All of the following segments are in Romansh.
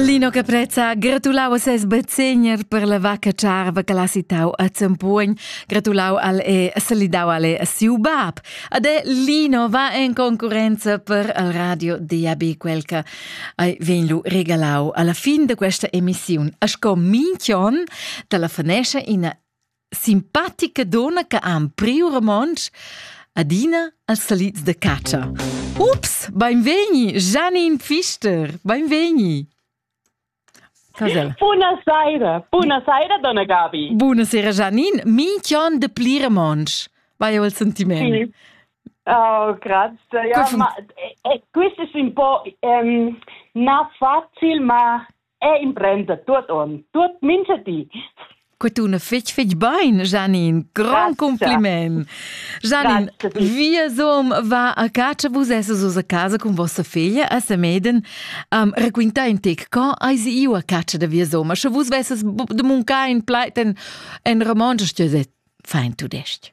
Lino Caprezza gratulau a ses bezegner per la vacca charva che l'ha citau a Zempugn, gratulau al e salidau al e a siu bab. Ed è Lino va in concurenza per al radio DAB quel che ai vegn lu regalau alla fin da questa emissiun. A sco minchion te la fanescia ina simpatica donna che ha priu romontsch adina als salids de catscha. Ups, beinvegni, Janine Pfister, beinvegni. Casel. Buonasera, buonasera donna Gabi. Buonasera Janine, minchion de pli romontsch. Vai il sentiment. Sì. Oh, grazie. Ja, ma, eh, eh, questo è un po' um, non facile, ma e imprenda tuot on, tuot mincha di. Que tuna fitg fitg bain, Janine. Grand compliment. Janine, wir som va a casa, vus esses a casa con vossa figlia a Semeden. Um, raquinta in tec, co eis io a casa da wir som? Sche vus vesses de muncar in pleit en, en romansch, stüset, fein tudest.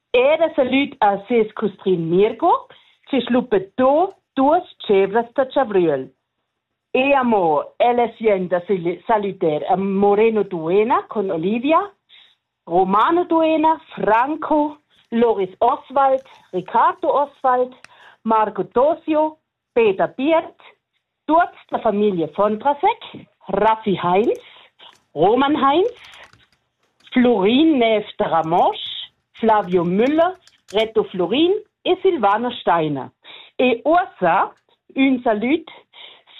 Era salüd a ses custrin Mirco che schluppetto duos tschevras da chavriel. E amo ella sien da salüder a Moreno Duena con Olivia, Romano Duena, Franco, Loris Oswald, Riccardo Oswald, Marco Tosio, Peter Biert, tuots da famiglia Fontrasec, Raffi Heinz, Roman Heinz, Florin Neff de Ramosch, Flavio Müller, Reto Florin e Silvana Steiner. E uossa ün salüd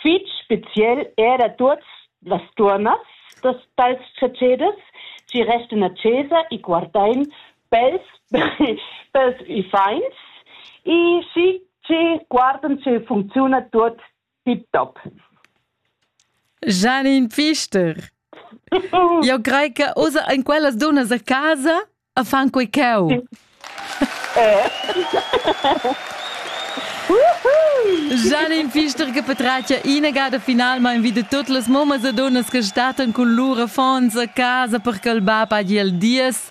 fich speziel er a tuots las tuornas dals tschetscheders chi restan a chesa e guardain pels pels uffants e schi che guardan sche funcziuna tuot tiptop. Janine Pfister, io crei che usa in quellas dunas a casa a fan quei ceu. Eh. Janine Pfister che patratgia inagada finalmain wieder tutte les mamas e donas che statan cun lur affons a casa per che il bab hagi el dies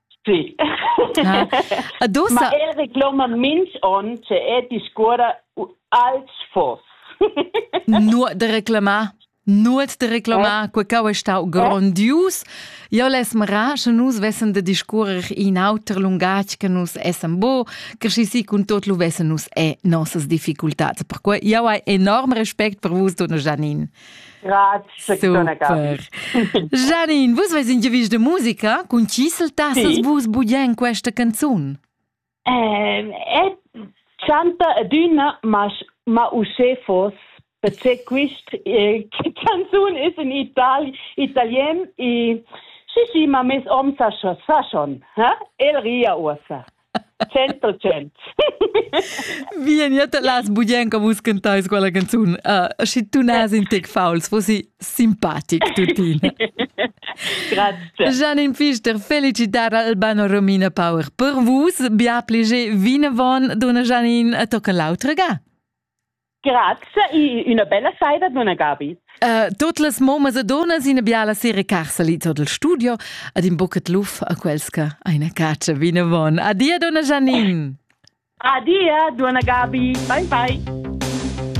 Sì. Ah. Ma el recloman mins on, se è discuora als fos. Nur de reclamar. Nuot de reclamar, eh? quecau è stau grondius. Io les mra, che nus vessen de discurrer in auter lungaj che nus essen bo, che si si cun tot lu vessen nus e nossas difficultats. Perquei io hai enorm respect per vus, donna Janine. Janine, vus veis in gevisch de musica cun chisel tassas vus bugen questa canzun? Ehm, et chanta adüna ma ma usche fos perché quist eh, canzun is in Itali italien e si si ma mes om sa sa schon ha el ria uossa Centro cent. Vieni las buglienca buscantais quella canzun. Uh, schi tu nas in tec fauls, fossi simpatic tuttina. Grazie. Janine Pfister, felicitar Albano Romina Power per vus. Bia pliege vinavon, donna Janine, a tocca l'autra ga. Grazie, una bella saida, donna Gabi. Uh, tot las momas e donas ina biala sera carsali tot il studio ad in bucet luf a quels che eine cacia vinavon. Adia, donna Janine. Adia, donna Gabi. Bye bye.